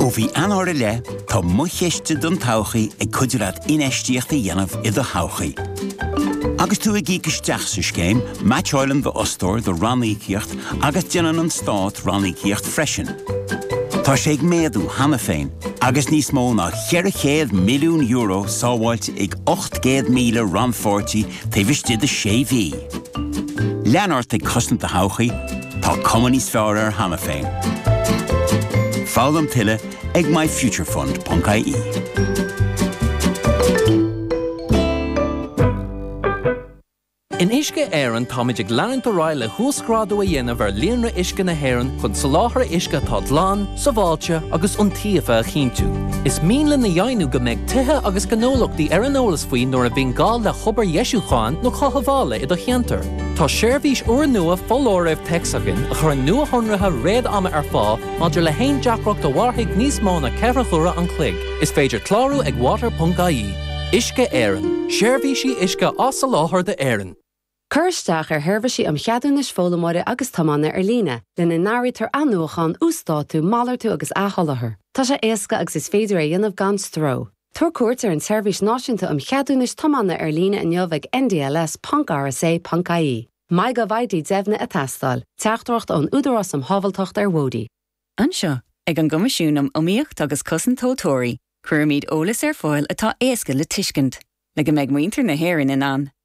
Ó mhí Eanáir i leith, tá Mo Chiste don Todhchaí ag cuidiú leat infheistíocht a dhéanamh i do thodhchaí. Agus tú ag íoc isteach sa scéim, meaitseálann d'fhostóir do ranníocaíocht agus déanann an Stát ranníocaíocht freisin. Tá sé ag méadú cheana féin, agus níos mó ná €400 milliún sábháilte ag 800,000 rannpháirtí taobh istigh de sé mhí! Lean ort ag cosaint do thodhchaí, Tá cuma níos fearr air cheana féin. Foghlaim tuilleadh ag myfuturefund.ie. In Uisce Éireann táimid ag leanúint ar aghaidh le huasghrádú a dhéanamh ar líonra uisce na hÉireann chun soláthar uisce atá glan, sábháilte agus iontaofa a chinntiú. Is mian linn a dheimhniú go mbeidh tithe agus gnólachtaí ar an eolas faoi nuair a bhíonn gá le hobair dheisiúcháin nó chothabhála i do cheantar. Tá seirbhís úrnua foláirimh téacs againn a chuireann nuashonruithe réad-ama ar fáil maidir le haon deacracht a mhairfidh níos mó ná ceithre huaire an chloig. Is féidir clárú ag water.ie. Uisce Éireann, seirbhísí uisce á soláthar d'Éirinn. Cuir isteach ar Sheirbhísí um Cheadúnais Foghlaimeora agus Tiomána Ar Líne, lena n-áirítear athnuachán, uasdátú, malartú agus athsholáthar. Tá sé éasca agus is féidir é a dhéanamh gan stró. Tabhair cuairt ar an tSeirbhís Náisiúnta um Cheadúnais Tiomána ar líne inniu ag ndls.rsa.ie. MyGovID deimhnithe ag teastáil. Teachtaireacht ón Údarás um Shábháilteacht ar Bhóithre. Anseo, ag an gCoimisiún um Iomaíocht agus Cosaint Tomhaltóirí, cuirimid eolas ar fáil atá éasca le tuiscint, le go mbeidh muintir na hÉireann in ann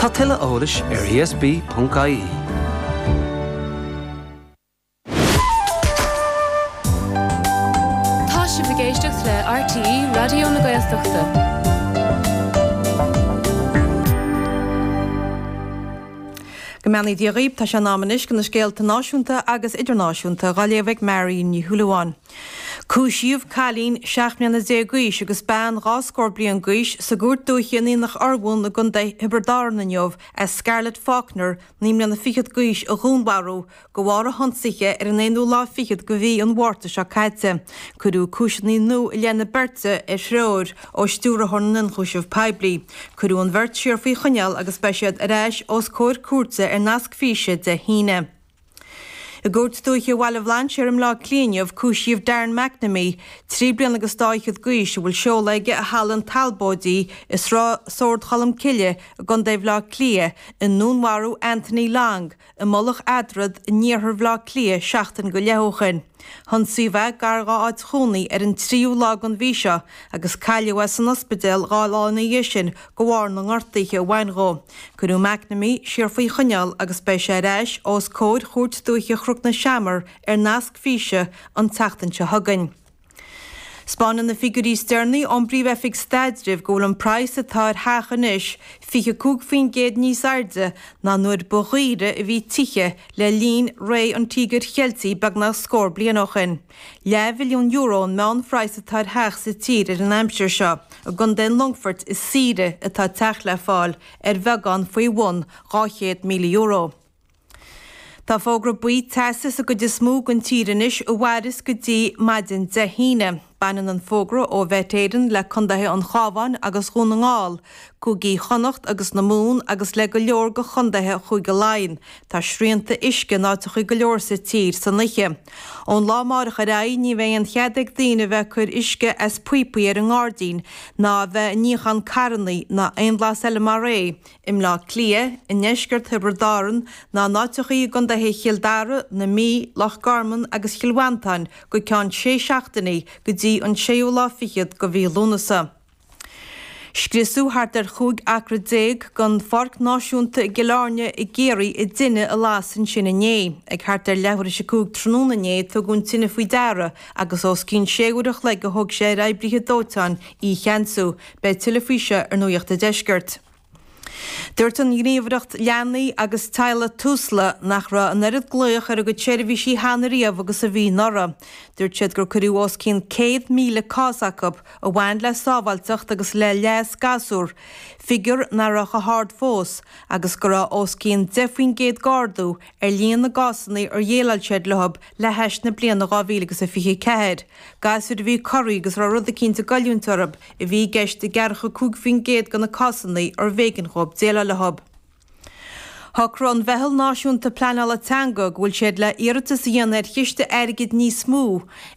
Tá tuilleadh eolais ar ESB.ie. Tá sibh ag éisteacht le RTÉ Raidió na Gaeltachta. Go mbeannaí Dia dhaoibh, tá sé in am anois do na scéalta náisiúnta agus idirnáisiúnta dhá léamh ag Marion Ní Shúilleabháin. Cúisíodh cailín seacht mbliana déag d'aois agus bean dhá scór bliain d'aois sa gCúirt Dúiche in Aonach Urmhumhan i gContae Thiobraid Árann inniu as Scarlett Faulkner, naoi mbliana fichead d'aois, a dhúnmharú de bharr a hionsaithe ar an aonú lá fichead de mhí an Mhárta seo caite. Cuireadh cúiseanna nua i leith na beirte ar threoir ó Stiúrthóir na nIonchúiseamh Poiblí. Cuireadh an bheirt siar faoi choinneáil agus beidh siad ar ais os comhair cúirte ar nasc físe Dé hAoine. I gCúirt Dúiche Bhaile Bhlainséir i mBleá Cliath inniu cúisíodh Darren McNamee, trí bliana agus dhá fhichead d'aois, a bhfuil seoladh aige i Halla an Talbóidigh i Sráid Sord Cholm Cille i gContae Bhleá Cliath, i ndúnmharú Anthony Long i Mullach Eadrad in iarthar Bhleá Cliath seachtain go leith ó shin. hIonsaíodh é gar dhá áit chónaí ar an tríú lá den mhí seo agus cailleadh é san ospidéal dhá lá ina dhiaidh sin de bharr na ngortuithe a bhain dhó. Cuireadh McNamee siar faoi choinneáil agus beidh sé ar ais os comhair Chúirt Dúiche Chnoc na Seamar ar nasc físe an tseachtain seo chugainn. 'Spáineann na figiúirí is deireanaí ón bPríomh-Oifig Staidrimh go bhfuil an praghas atá ar theach anois 25% níos airde ná nuair ba dhaoire a bhí tithe le linn ré an Tíogair Cheiltigh beagnach scór bliain ó shin, leathmhilliún euro an meánphraghas atá ar theach sa tír an aimsir seo, i gContae an Longfoirt is saoire atá teach le fáil ar bheagán faoi bhun €200,000. Tá fógra buí teasa sa gcuid is mó den tír anois, a mhairfeas go dtí maidin Dé hAoine. Baineann an fógra ó Mhet Éireann le condaetha an Chabháin agus Dhún na nGall, Cúigí Chonnacht agus na Mumhan agus le go leor de chondaetha Chúige Laighean. Tá srianta uisce in áiteacha go leor sa tír san oíche. Ón lá amárach ar aghaidh ní bheidh aon chead ag daoine a bheith ag cur uisce as píopaí ar an ngairdín ná a bheith ag níochán carrannaí ná aon bhlas eile mar é. i mBleá Cliath, i ndeisceart Thiobraid Árann, ná in áiteachaí i gcondaetha Chill Dara, na Mí, Loch Garman agus Chill Mhantáin go ceann sé seachtainí go dtí an séú lá fichead de mhí Lúnasa. Scriosadh thart ar chúig acra déag den Pháirc Náisiúnta i gCill Airne i gCiarraí i dtine a las ansin inné. Ag thart ar leathuair théis a cúig tráthnóna inné a tugadh an tine faoi deara agus os cionn sé uair an chloig a thóg sé ar oibrithe dóiteáin í a cheansú, Beidh tuilleadh faoi seo ar Nuaíocht an Deiscirt. Dúirt an Ghníomhaireacht Leanaí agus Teaghlaigh Tusla nach raibh an oiread glaoch ar a gcuid seirbhísí cheana riamh agus a bhí anuraidh. Dúirt siad gur cuireadh os cionn 100,000 cás acu a bhain le sábháilteacht agus le leas gasúr, figiúr nach raibh chomh hard fós, agus go raibh os cionn 10 faoin gcéad d'ardú ar líon na gcásanna ar dhéileáil siad leo le hais na bliana 2000 agus a 24. Gasúir a bhí corraithe agus a raibh rud eicínt ag goilliúint orthu a bhí i gceist i gceathracha 5% de na cásanna arbh éigean dhóibh déileáil leo. Shocraigh an Mheitheal Náisiúnta Pleanála Teanga go bhfuil siad le hiarratas a dhéanamh ar chiste airgid níos mó,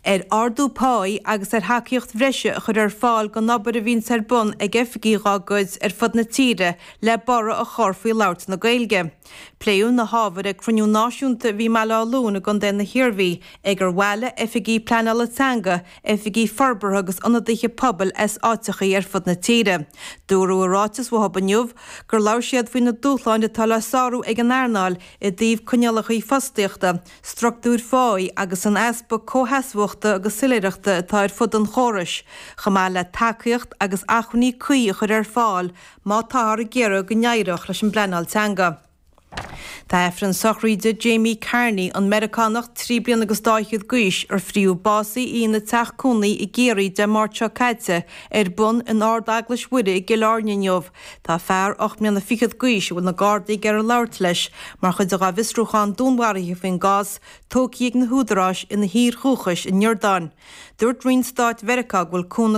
ar ardú páí agus ar thacaíocht bhreise a chur ar fáil don obair a bhíonns ar bun ag oifigigh dá gcuid ar fud na tíre le borradh a chur faoi labhairt na Gaeilge. Pléadh na hábhair ag cruinniú náisiúnta a bhí i mBaile Átha Luain i gContae na hIarmhí, ag ar bhuail oifigigh pleanála teanga, oifigigh forbartha agus ionadaithe pobail as áiteachaí ar fud na tíre. Dúradh i ráiteas uathab inniu gur labhair siad faoi na dúshláin atá le sárú ag an earnáil i dtaobh coinníollacha fostaíochta, struchtúir phá agus an easpa comhsheasmhachta agus soiléireachta atá ar fud an chórais, chomh maith le tacaíocht agus acmhainní cuí a chur ar fáil má táthar ag iarraidh go n-éireodh leis an bpleanáil teanga. Tá Aifreann sochraíde Jamie Carney, an Meiriceánach trí bliana agus dhá scór d'aois ar fríothadh básaithe í ina teach cónaí i gCiarraí Dé Máirt seo caite, ar bun in Ardeaglais Mhuire i gCill Áirne inniu. Tá fear ocht mbliana fichead d'aois, a bhfuil na Gardaí ag iarraidh labhairt leis mar chuid dá bhfiosrúchán dúnmharaithe faoin gcás, tógtha ag na húdaráis ina thír dhúchais, an Iordáin. Dúirt Roinn Stáit Mheiriceá go bhfuil cúnamh.